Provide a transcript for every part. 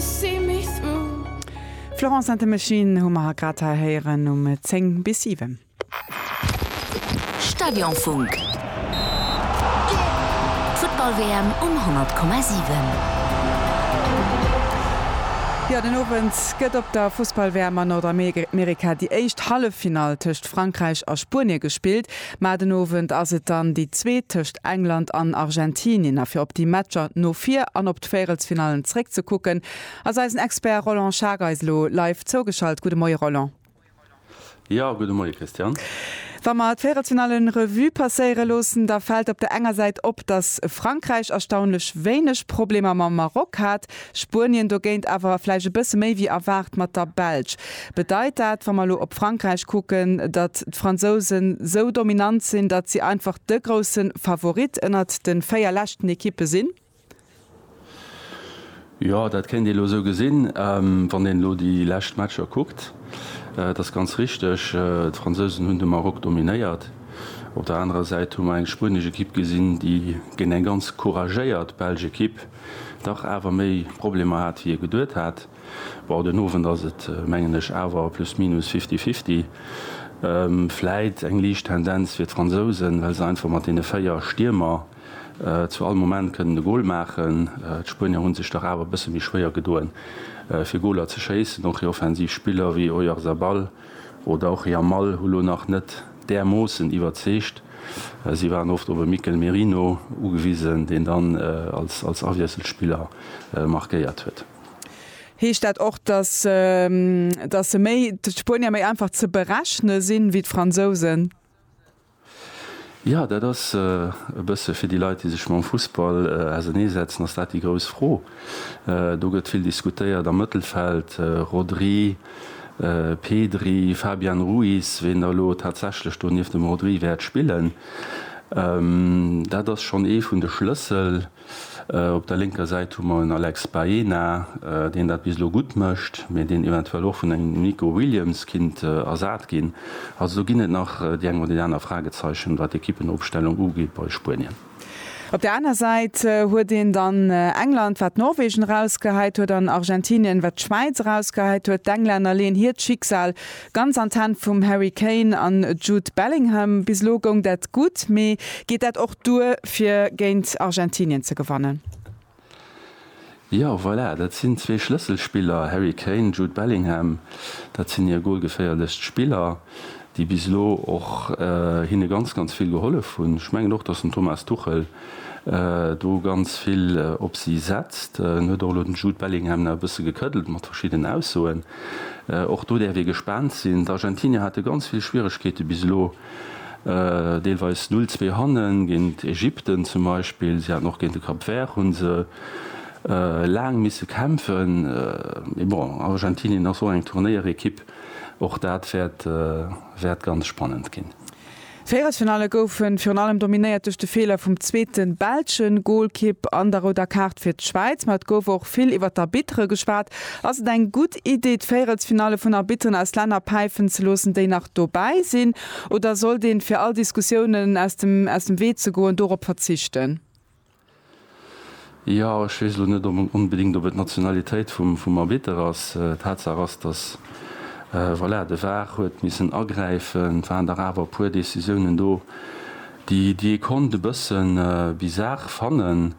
see me through. Florence and the Machine hu mer grad hei héieren um 10 bis 7. Stadionfunk, d'Futtball-WM um 100,7. Jo, den Owend gëtt op der Fussball-WM a Nordamerika déi éischt Halleffinall tëscht Frankräich a Spuenie gespillt. Mä den Owend ass et dann déi zweet tëscht England an Argentinien. A fir op déi Matcher no vir an op. Vérelsfinallen zréckzekucken, ass eisen Expert Roland Schaack eis elo live zougeschalt. Gudde Moie Roland. Jo, gudde Moie Christiane. Wa mer d'Vérelsfinallen Revue passéiere loossen, da fält op der enger Säit op, datt Frankräich erstaunlech wéineg Problemer mam Maroc hat, Spuenien dogéint awer vläicht e bësse méi wéi erwaart mat der Belsch. Bedeit dat, wa mer elo op Frankräich kucken, datt d'Fransousen esou dominant sinn, datt si einfach de grousse Favorit ënnert de véier leschten Ekippe sinn? Jo, dat kéint ee elo esou gesinn, wann een elo déi lescht Matcher kuckt. Et ass ganz richteg, d'Fransousen hunn de Maroc dominéiert. Op der anerer Säit hu mer eng spuenesch Ekipp gesinn, déi géint eng ganz couragéiert belsch Ekipp dach awer méi Problemer hat, wéi ee geduet hat. Bon, den Owend ass et, mengen ech, awer plus minus fifty fifty. Vläit eng liicht Tendenz fir d'Fransousen, well se einfach mat deene véier Stiermer, Zu all Moment kënnt en e Gol maachen. D'Spuenier hu sech dach awer e bësse méi schwéier gedoen, fir Goler ze schéissen. Och hir offensiv Spiller wéi Oyarzabal oder och Yamal hu lo nach net därmoossen iwwerzeegt. Si waren oft op e Mikel Merino ugewisen, deen dann als Awiesselspiller markéiert huet. Heescht dat och, dass d'Spuenier méi einfach ze berechne sinn, wéi d'Fransousen? Jo, dat ass e bësse fir déi Leit, déi sech mam Fussball auserneesetzen, ass dat déi grouss Fro. Do gëtt vill diskutéiert am Mëttelfeld, Rodri, Pedri, Fabian Ruiz, wien da elo tatsächlech do nieft dem Rodri wäert spillen. Dat ass schonn ee vun de Schlëssel. Op der lénker Säit hu mer en Alex Baena, deen dat bis elo gutt mécht, mee deen eventuell och vun engem Nico Williams kinnt ersat ginn. Also do ginn et nach déi eng oder déi aner Fragezeichen, wat d'Equippenopstellung ugeet bei Spuenien. Op der aner Säit huet een dann England, wat Norwegen erausgehäit huet, an Argentinien, wat d'Schwäiz erausgehäit huet. D'Englänner leeën hiert Schicksal Ganz an d'Hänn vum Harry Kane an Jude Bellingham. Bis elo goung dat gutt, mee geet dat och duer fir géint Argentinien ze gewannen? Jo, voilà, dat sinn zwee Schlësselspiller, Harry Kane, Jude Bellingham. Dat sinn hir golgeféierlechst Spiller, déi bis elo och hinne ganz, ganz vill gehollef hunn. Ech mengen och, datt den Thomas Tuchel do ganz vill op si setzt. En huet och elo den Jude Bellingham nach e bësse gekëddelt mat verschiddenen Aussoen. Och do däerf ee gespaant sinn. D'Argentinier hate ganz vill Schwieregkeete bis elo, deelweis null zwee hannen, géint Ägypten zum Beispill. Si haten och géint de Cap Vert hu se laang misse kämpfen. Mee bon, Argentinien ass och eng Turnéierekipp, och dat wäert ganz spannend ginn. Véierelsfinalle goufen virun allem dominéiert duerch de Feeler vum zweeten belschen Goalkipp an der rouder Kaart fir d'Schwäiz. Ma et gouf och vill iwwert d'Arbitre geschwat. Ass et eng gutt Idee d'Véierelsfinalle vun Arbitteren aus Länner päifen ze loossen déi nach dobäi sinn? Oder sollt een, fir all Diskussiounen aus dem Wee ze goen, dorop verzichten? Jo, ech weess elo net onbedéngt, ob et d'Nationalitéit vum Arbitter ass. Tatsaach ass, datt, voilà, de var huet missen agräifen. Et waren dach awer e puer Decisiounen do, déi ee konnt e bësse bizar fannen.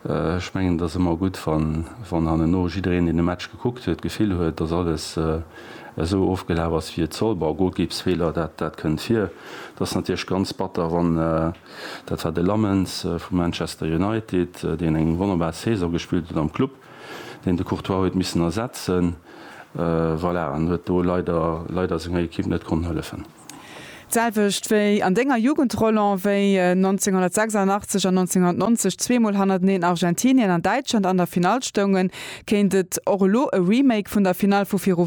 Ech mengen, et ass ëmmer gutt, wann hanneno jiddereen, deen de Match gekuckt huet, d'Gefill huet, datt alles esou ofgelaf ass, wéi et soll. Bon, Golkipsfeeler, dat kënnt vir. Et ass natierlech ganz batter, wann. Dat war de Lammens vu Manchester United, deen eng wonnerbar Saison gespillt huet am Club, deen de Courtois huet missen ersetzen, voilà, an huet do leider, leider senger Ekipp net konnt hëllefen. D'selwecht wéi an denger Jugend, Roland, wéi 1986 an 1990 zweemol hannerteneen Argentinien an Däitschland an der Finall stoungen, kéint et och elo e Remake vun der Finall vu viru